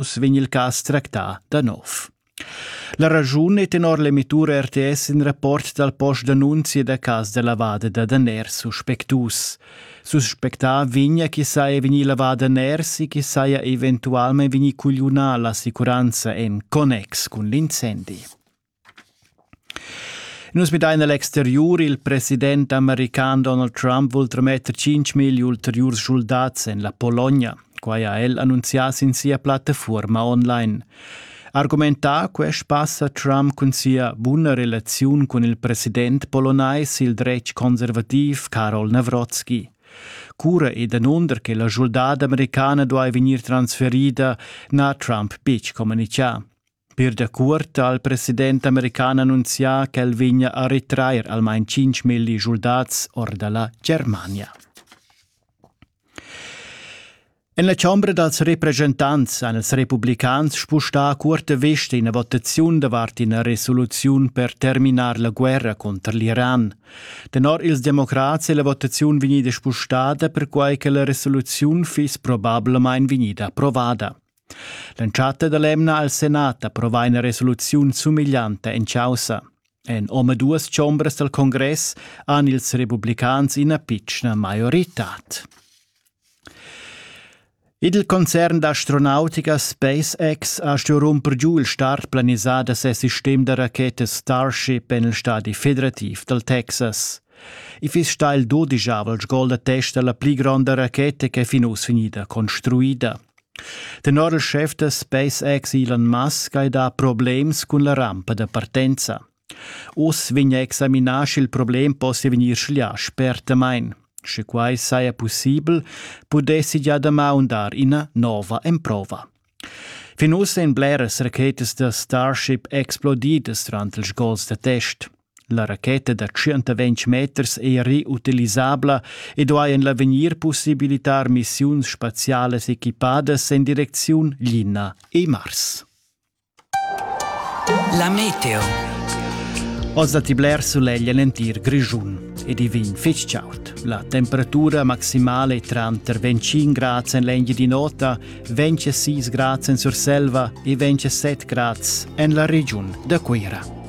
uss vegn il cas tractà da nov. La raschun è tenor l'emitura RTS in rapport dal post d'annunzia da cas da lavada da daners suspectus. Suspectà vegna chi saja vegnì lavada daners e chi saja eventualmente vegnì cugliunà l'assicuranza en connex cun l'incendi. Nus midain a l'exteriur. Il president american Donald Trump vul trametter 5 mil ulteriurs schuldats en la Pologna. Quai ha el annunzià sin sia plattafuorma online. Argumentà quest pass ha Trump cun sia buna relaziun cun il president polonais, il dretg conservativ Karol Nawrocki. Cura e danunder che la schuldada americana duai vegnir transferida n'ha Trump betg communitgà. Per dacuort ha il president american annunzià ch'el vegna a retrair almain cinc milli schuldats or dalla Germania. En la chombra dals represchentants han ils republicans spustà cuorta vesta ina votaziun davart ina resoluziun per terminar la guerra cunter l'Iran. Tenor ils democrats è la votaziun vegnida spustada perquai che la resoluziun fiss probablamain vegnida approvada. L'entschatta dall'emna al Senat approvà ina resoluziun sumeglianta en caussa. En omaduas chombras dal congress han ils republicans ina pitschna maioritad. Il concern d'astronautica SpaceX ha stuì rumper giu il start planisà da ses sistem da rachetas Starship en il stadi federativ dal Texas. I fiss stà il dodijavel sgol da test da la pli gronda racheta ch'è fin uss vegnida construida. Tenor il schef da SpaceX Elon Musk hai dà problems cun la rampa da partenza. Uss vegn a examinar sch'il problem possia vegnir schlià spertamain. Sche quai saja pussibel, pudessi gia damaun dar ina nova emprova. Fin uss èn bleras rachetas da Starship explodidas durant ils gols da test. La racheta da tschient-ventg meters ei reutilisabla ed ei en l'avegnir possibilitar missiuns spazialas equipadas en direcziun Lina e Mars. La meteo. Oz datti bler sulegl en l'entir Grischun ed i vegn fitg chaud. La temperatura maximale è tranter 25 grad en l'Engie di Nota, 26 grad en Surselva e 27 grad en la regiun da Cuira.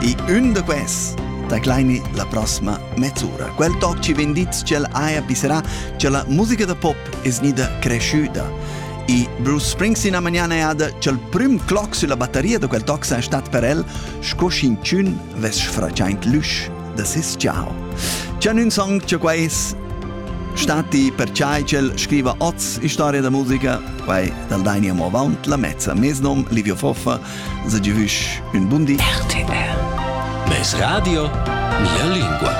E ün da quels da Kleini la prossima mezz'ura. Quel toc ci vendits ch'el haja pisserà, che la musica da pop es gnida cresciuda. E Bruce Springsteen a magnana è ada ch'el prüm cloc sulla battaria da quel toc sai stat per el, sco sch'inchün vess sfraciaint l'üsch da ses ciao. C'è un song che quais stati perciai ch'el scriva oz storia da musica, quai dal Daini Amo Avaunt, la mezza mesnom Livio Foffa, se di hüsch ün bundi RTR Mes Radio, mia lingua